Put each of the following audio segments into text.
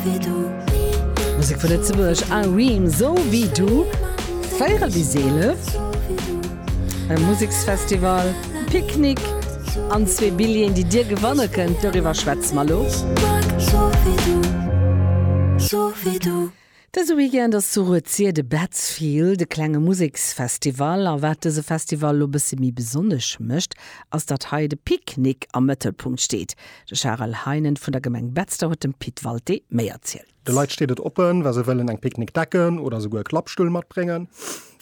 wéi du. Musek vu Lëtzebuerg a Reem So wéi du, 4 bis 11, e Museksfestival, Picknick an zwee Billjeeën, déi dir gewanne kënnt. Doriwwer schwätze mer elo. Ech mag so wéi du, so wéi du. Dëse Weekend ass zu Rued-Sir de Betzfield, e klenge Museksfestival. A wat dëse Festival elo e bësse méi besonnesch mécht, ass, datt hei de Picknick am Mëttelpunkt steet. De Charel Heinen vun der Gemeng Betzder huet dem Pit Walté méi erzielt. De Leit steet et oppen, wa se wëllen eng Picknickdecken oder souguer e Klappstull matbréngen.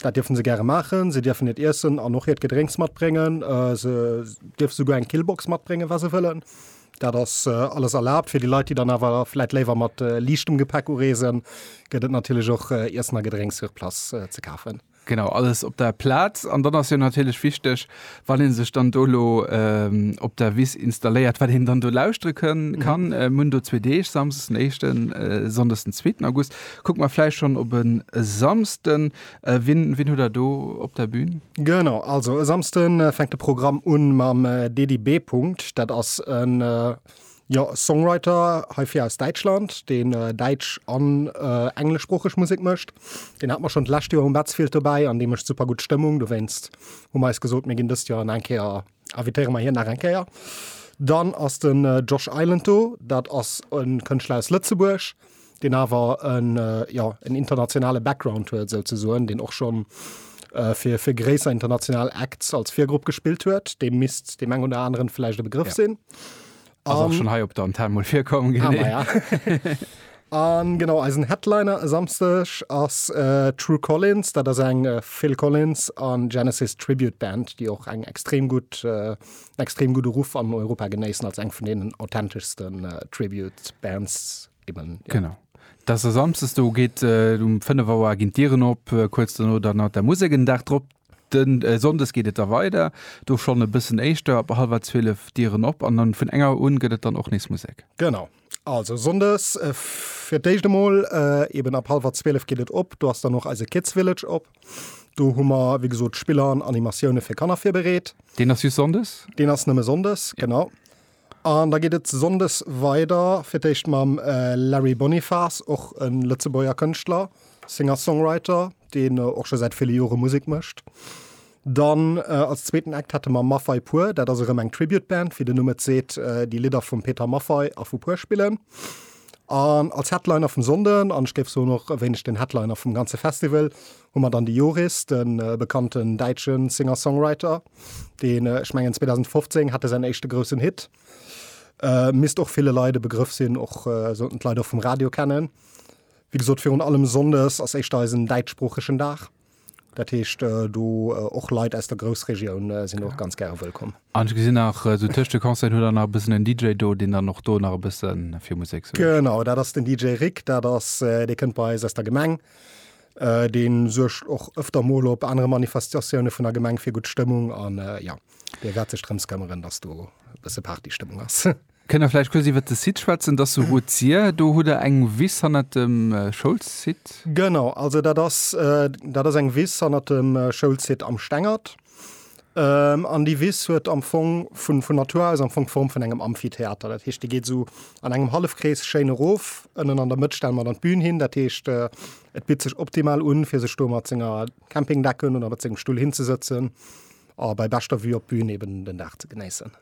Dat dierfe se gäre maachen. Se dierfen hiert Iessen an och hiert Gedrénks matbréngen. Se dierfe souguer eng Killbox matbréngen, wa se wëllen. Dat ass alles erlaabt. Fir déi Leit, déi dann awer vläit léiwer mat liichtem Gepäck ureesen, gëtt et natierlech och Iessen a Gedrénks sur place ze kafen. Genau, alles op der Plaz. An dann ass jo natierlech wichteg, wann ee sech dann do elo op der Wiss installéiert, wat een dann do lauschtere kann. Mir hunn do zwee Deeg, Samsdes den éischten, Sonndes den zweeten August. Kucke mer vläicht schonn op e Samsden. Wien, wien hutt Der do op der Bühn? Genau, also e Samsde fänkt de Programm un mam Dedy B. Punkt. Dat ass e. Jo, e Songwriter heifir aus Däitschland, deen äh, däitsch an äh, engleschsproocheg Musek mëscht. Deen hat mer schon d'lescht Joer um Betzfield dobäi an dee mëscht super gutt Stëmmung. Dowéinst hu mer eis gesot, mir ginn dëst Joer an eng Kéier invitéiere mer hien nach eng Kéier. Dann ass den äh, Josh Island do, dat ass e Kënschtler aus Lëtzebuerg, deen awer en, jo, en internationale Background huet, esou ze soen, deen och schonn fir, fir gréisser international Acts als Virgrupp gespillt huet, deem misst deem eng oder aneren vläicht e Begrëff sinn. Ass och schonn hei op der Antenne mol virkomm, genau. Ah, ja. An genau, eisen Headliner e Samsteg ass True Collins, dat ass eng Phil Collins an Genesis Tribute Band, déi och eng extrem gutt, extrem gudde Ruff an Europa genéissen als eng vun deenen authenteschsten Tribute Bands Genau. Dass se samstes do geet et um 5 Auer ginn d'Dieren op, kuerz dono dann nach der Musek. En Dag drop, den Sonndes geet et da weider, do schonn e bëssen éischter, ab hallwer 12 d'Dieren op an dann vun eng Auer un gëtt et dann och nees Musek. Genau. Also Sonndes fir d'éischt emol eben ab hallwer 12 geet et op, do ass dann och eise Kids Village op. Do hu mer wéi gesot Spiller an Animatioune fir Kanner virbereet. Deen ass just Sonndes? Deen ass nëmme Sonndes, genau. An da geet et Sonndes weider fir d'éischt mam Larry Bonifas, och e Lëtzebuerger Kënschtler, Singer-Songwriter, deen och scho säit ville Jore Musek mécht. Dann als zweeten Act hätte mer Maffay Pur, dat ass erëm eng Tribute-Band, wéi den Numm et seet, déi Lidder vum Peter Maffay a vu Pur spillen. An als Headliner vum Sonnden, an ech géif soen och e wéineg den Headliner vum ganze Festival, Hu mer dann de Joris, de bekannten däitsche Singer-Songwriter, deen, ech mengen 2015 hat e säin éischte groussen Hit, misst och ville Leit e Begrëff sinn, och sollten d'Leit och vum Radio kennen. Wéi gesot, virun allem sonndes ass éischter eisen däitschsproochegen Dag. Dat heescht, do och Leit aus der Groussregioun sinn och ganz gäre wëllkomm. An ech gesinn nach, esou tëscht de Concerten hutt der nach e bëssen en DJ do, deen dann och do nach e bësse fir Musek suergt. Genau, dat ass den DJ Rick. Dat ass, dee kënnt bei eis aus der Gemeng. Deen suergt och öfter mol op anere Manifestatiounen vun der Gemeng fir gutt Stëmmung an ja, dee wäert sech drëms këmmeren, dass do e bësse Party-Stëmmung ass. Kënnt der vläicht kuerz iwwert de Site schwätzen? Dass sou gutt sier. Do hutt der eng Wiss hannert dem Schoulsite. Genau, also dat ass, dat ass eng Wiss hannert dem Schoulsite am Stengert. An déi Wiss huet am Fong vun vun Natur aus am Fong d'Form vun engem Amphitheater. Dat heescht, déi geet esou an engem Hallefkrees schéin erof. Ënnen an der Mëtt stelle mer dann d'Bün hin. Dat heescht, et bitt sech optimal un, fir sech do mat senger Campingdecken oder mat sengem Stull hinzesëtzen a bei beschter Vue op d'Bün eeben den Dag ze genéissen.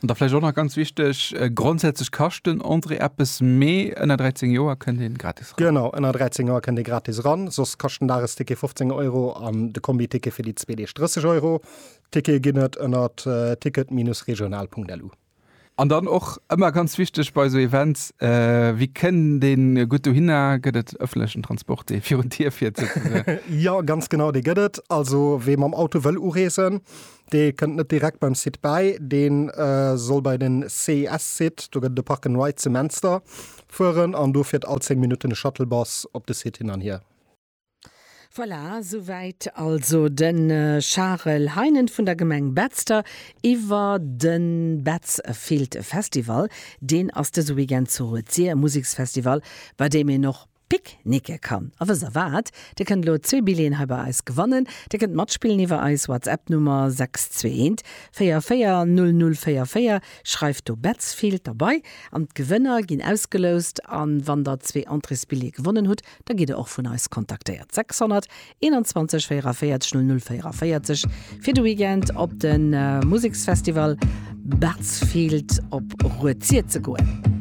An da vläicht och nach ganz wichteg, grondsätzlech kascht den Entrée eppes, mee ënner 13 Joer kënnt ee gratis ran. Genau, ënner 13 Joer kënnt ee gratis ran, soss kascht den Dagesticket 15 Euro an de Kombiticket fir déi zwee Deeg 30 Euro. D'Tickete ginn et ënner ticket-régional.lu. An dann och ëmmer ganz wichteg bei esou Events, Wie kënnt een gutt dohinner? Gëtt et ëffentlechen Transport, dee virun d'Dier fiert souzesoen? Jo, ganz genau, dee gëtt et. Also wee mam Auto wëll ureesen, Dee kënnt net direkt beim Site bäi, dee soll bei den CIS-Site, do gëtt et e Park and Ride zu Menster, fueren an do fiert all 10 Minutten e Shuttlebus op de Site hin an hier. Voilà, souwäit also de Charel Heinen vun der Gemeng Betzder iwwer de Betzfield Festival. Deen ass dëse Weekend zu Rued-Sir, e Museksfestival, bei deem een och Pic nicke kann a wëss erwaart, dir kënnt elo zwee Billéen hei bei eis gewannen. Dir kënnt matspillen iwwer eis Whatsapp Nummer 621 440044, schreift do Betzfield derbei an d'Gewënner ginn ausgeloust an wann der zwee Entréesbillée gewonnen hutt, da gitt der och vun eis kontaktéiert. 621 44 00 44 fir de Weekend op de Museksfestival Betzfield op Rued-Sir ze goen.